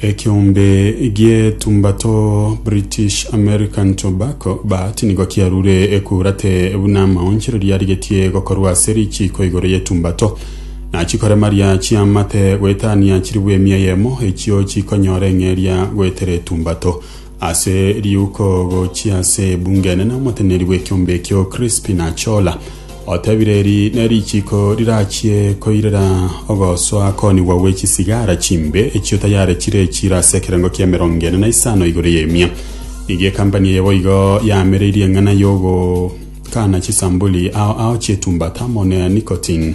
Ekeombe gi'etumba to British American Tobacco, BAT, nigo kiarure ekurate buna amaonchereria arigetie gokorwa ase richiiko igoro y'etumba to. Nachikoremaria chiamate goetania chiribwe emia eyemo, echio chikonyora eng'eria goetera etumba to. Ase riuko gochia ase ebunge enene omoteneneri bw'ekiombe ekio Crispin Achola otebire eri nerichiko rirachie koirera ogosoa konigwa gwe chisigara chimbe echio tayare chire echiro ase ekerengo kia emerongo ene na isano igoro y'emia. Nigo ekampani eye boigo yamereirie eng'ana y'ogokana chisambuli ao ao chietumbata amo ne nicotine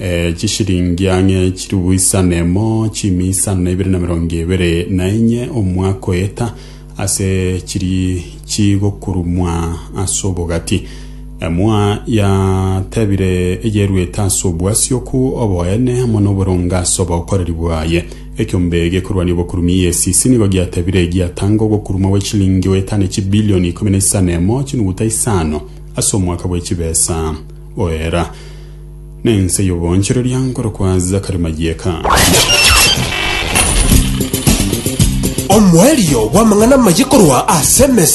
Ee, chishiringi ang'e chiribu isa na emo, chimi isa na ibere na mirongo ebere na enye omwaka oyeta, ase chiri chigokurumwa ase obogati. Emwa yatebire eyeruete ase obwasioku, oboene, amo noboronge ase obokoreri bwaye. Ekiombe gekorwania obokurumi EACC nigo giatebire giatanga ogokurumwa gwe chiringi goeta ne chibilioni ikomi na isa na emo, chinuguta isano, ase omwaka bwe chibesa. Oera, na ense y'oboonchoreria nkorokwa Zakari Mayieka. Omoerio bw'amang'ana amaya korwa ase emesa.